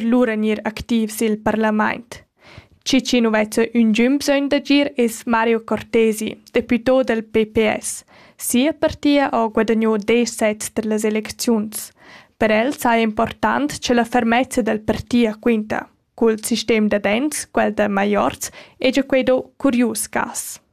lura gnir activ i'l parlamaint. Chi chi nu vezza ün gün bsögn d'agir es Mario Cortesi, deputò dal PPS. Sia partia ho guadagno desch sets tar las elecziuns. Per el saja important cha la fermezza dal partia quinta. Cul sistem da dents, quel da maiorz, hegia quai do curius cas.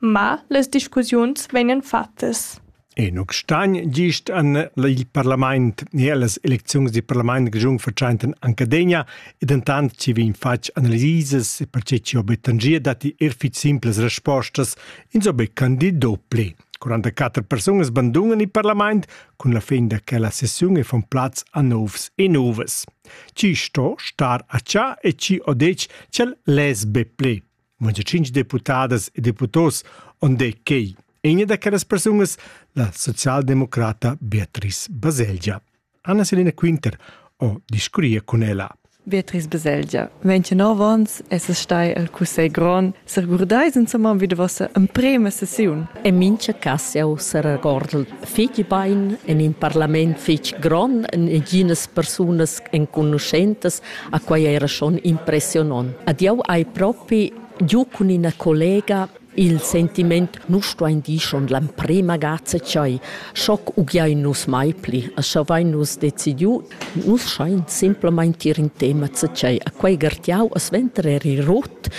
Ma las discussiuns vegnan fattas. Enoch Stein gist an il parlament e las elecziuns del parlament grischun vertscheinten Ancadegna e dentant ci vegn fatg analises e perche ci obet tangia datti er fitg simples respostas ins obet candido ple. 44 persunas bandunan il parlament cun la fin da che la sessiun e von plaz a novs e novas. Ci sto star a cià e ci odec cel les be ple. Muncha tschinch deputadas e deputos on de quei. Egna da quellas persunas, la socialdemocrata Beatrice Baselgia. Anna Selina Quinter o discuria con ella. Beatrice Baselgia, 29 ans es stai al Cussegl Grond. S'regurdais insomma wie de vossa emprema sessiun? En mincha cas jau s'regordel fitg bain en in parlament fitg grond, en ginas persunas enconuschentas A quai era schon impressionant. Ad jau hai propi giu cun ina collega il sentiment nu stuain dir schon l'emprema gazza chai, schoc ugiain nus mai pli, a schavein nus decidiu, nus schain simplamain tir in tema chai. A quei gartiau a sventer eri rot,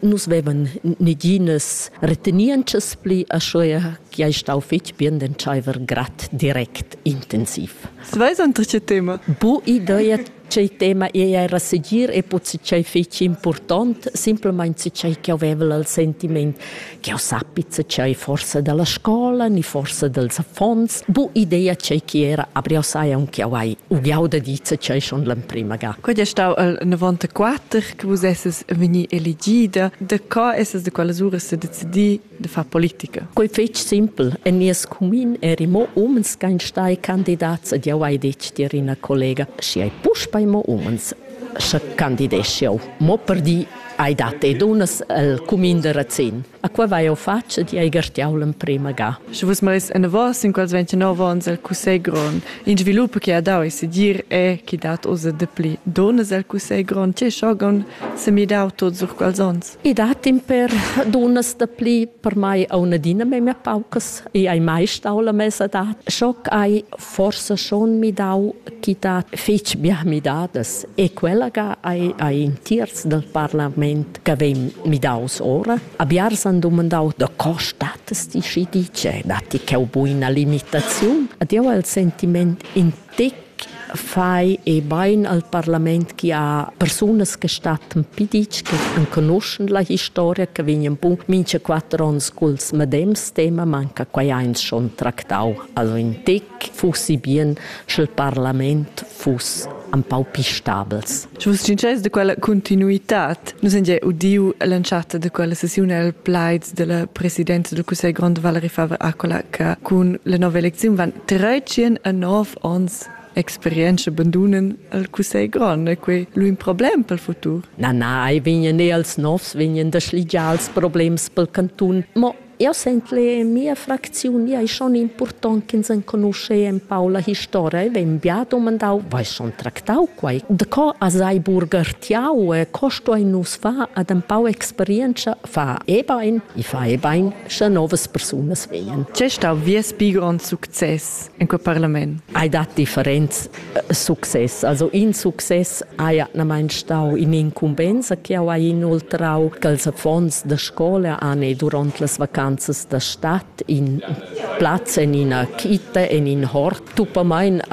nus vevan neginas retenientschas pli, a schea che ei stau fetg bien d'entscheiver grad direct intensiv. Was war das dritte Thema? Bu idee Tgei tema ei era segir e puzzi tgei fetg impurtont, simplamain tgei che haveva il sentiment che sappi tgei forsa dalla scola ni forsa dels affons, bu idea tgei che era abriau sai aunc auai, ugiau da dir tgei schon l'emprima ga. Quei ei stau il 94 che vus esses vegni elegida, da co esses da quelles uras se decidi de far politica. Quei fetg simpel. En nies cumin eri mo umens ch'ein stai candidats ed jau hai detg tier ina collega, schi ei puspei mo umens, sche candideschi jau. Mo per di hai dat e dunnas el cumin de Razin. A qua vai jau fatg ed hai gartiau l'emprema ga. Sche vus meis enavos sin quels 29 onns el cussegl grond, in svilup che ha dau e sedir è che dat oz dapli dunnas el cussegl grond, tge schogon semidau tot sur quels onns. I dat in per dunas da pli, per mai au adina memia paucas, i ai mai stau la mesa da. Schoc ai forsa schon midau chi dat fich bia midadas e quella ga ai, ai in terz del parlament che vegn midaus ora. A biars han dumandau da co statas ti schi dice, datti cheu buina limitaziun? Ad eu ha il sentiment in tec fai e bain al parlament chi ha persunas che stattan piditsch, che enconuschen la historia, che vegnan bun mincha quatter ons culs medems tema, manca quai eins schon tractau. Also in tec fussi bien, sch'el parlament fuss ein pau pi stabels. Sut success da quella continuitad nus han gia udiu l'entschatta da quella sesiun el plaids della presidenza del Cussegl grond Valerie Faber-Accola che cun la nova eleziun van 13 a 9 ons experienza abandonen al Cussegl grond e quei lu in problem pel futur. Na, na, ei vegnan e als novs vegnan da schligiar els problems pel cantun, mo Eu sent che mia fracziun ei schon impurtont ch'ins enconusce empau la historia. E vegn bia domandau, vai schon tractau quei? De co as hai burgertiau e co stoi nus far ad empau experienza fa e bain, i fa e bain, sche novas persunas vegien. C'è stau vies bi grond success en quel parlament? Hai dat differents success. Also in success haja adnamain stau in'incumbensa che jau hai inoltrau ch'als affons da scola han ei duront las vacanzas da stad in plaz en ina quita, en in hort. Tuppamain ha